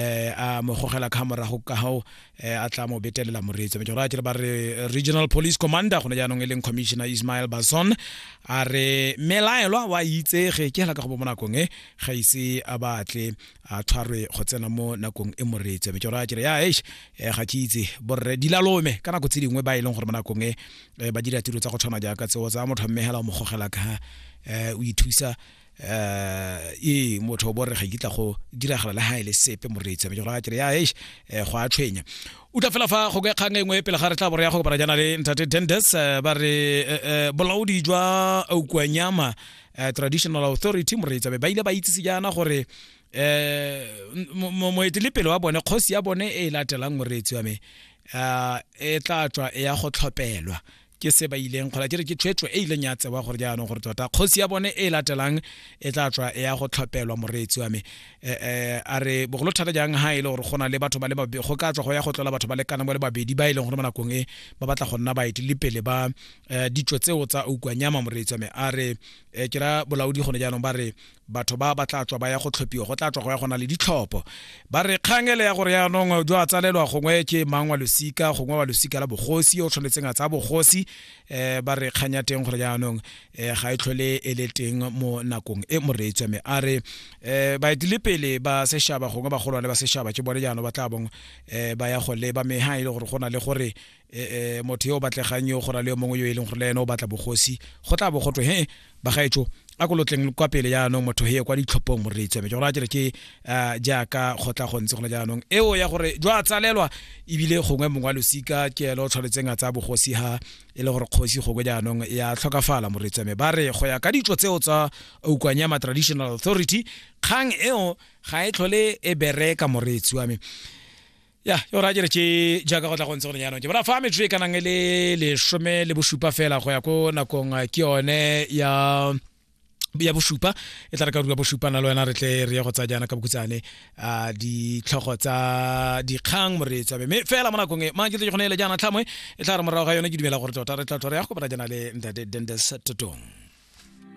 eh a mo gogela ka morago ka hao eh, a tla mo betelela moreetsi me jora ba re regional police commander gone jaanong e leng commissioner ismael bason a re melaelwa wa itsege ke hela ka go bo mo nakong e ga ise a batle a tshwarwe go tsena mo nakong e moreetsi me jora re ya eish eh, ga ke itse borre dilalome ka nako tse dingwe ba e leng gore mo nakong e eh, ba dira tiro tsa go tshwana jaaka tseo tsa motho mmehela o mo gogela ka eh, o ithusa eh e motho o borre ga kitla go diragala le ha ile e sepe moreitse me jora kere ya eish eh, go a tshwenya o tla fela fa go ke kgang e nngwe pele ga re tla bore ya go kopana jana le ntate Dendes eh, ba re eh, bolaodi jwa Aukwanyama traditional authority moreitse ba ile ba itsise jana gore eh moetelepele wa bone kgosi ya bone e latelang moreitse wa me e tla tswa ya go tlhopelwa ke se ba ileng kgola ke re ke tshwetso e ileng ya tsewa gore jaanong gore tota kgosi ya bone e latelang e tla tswa e ya go tlhopelwa moreetsi wa me eh, eh, a re bogolo thata jang ha e le gore go na le batho ba le babedi go ka tswa go ya go tlola batho ba le kana mo le babedi ba e leng gore mo nakong e ba batla go nna baeti le pele ba eh, ditso tseo tsa oukwanyama moreetsi wa me a re ke ra bolaodi gone jaanong ba re batho ba ba tla tswa ba ya go tlhophiwa go tla tswa go ya gona le ditlhopho ba re kgang ele ya gore yaanong jo a tsalelwa gongwe ke mang wa losika gongwe wa losika la bogosi o tshwanetseng a tsaya bogosi um ba re kgang ya teng gore yaanong um eh, ga e tlhole e le teng mo nakong e moreetswa mme a re um baetilepele ba sešaba gongwe bagolwane ba sešaba ke bone jaanong ba tla bong um ba ya go leba mme ga e le gore go na le gore e, e, motho yo o batlegang yo go ra le yo mongwe yo e leng gore le ene o batla bogosi go tla bo go twe he bagaetso a ko lotleng kwa pele jaanong motho he kwa ditlhophong moreetsi wa me ke gore a kere ke uh, jaaka go tla go ntse gona jaanong eo ya gore jwa tsalelwa ebile gongwe mongwe wa losika ke elo o tshwanetseng a tsaya bogosi ha e le gore kgosi gongwe jaanong ya tlhokafala moreetsi wa me ba re go ya ka ditso tseo tsa ukwanyama traditional authority kgang eo ga e tlhole e bereka moreetsi wa me ya yo ra jere ke jaaka go tla go ntse gore jaanong ke bona fa metsotso e ka nang e le lesome le bosupa fela go ya ko nakong eh, ke yone ya ya bosupa e tla re ka rua bosupa na le wena re tle re ye go tsa jaana ka bokutsane a ditlhogo tsa dikgang moreetsa mme fela mo nakong e mang ke tle ke gone ele jaana tlhamwe e tla re morago ga yone ke dumela gore tota re tla tlhore ya go kopana jana le ntate dendes totong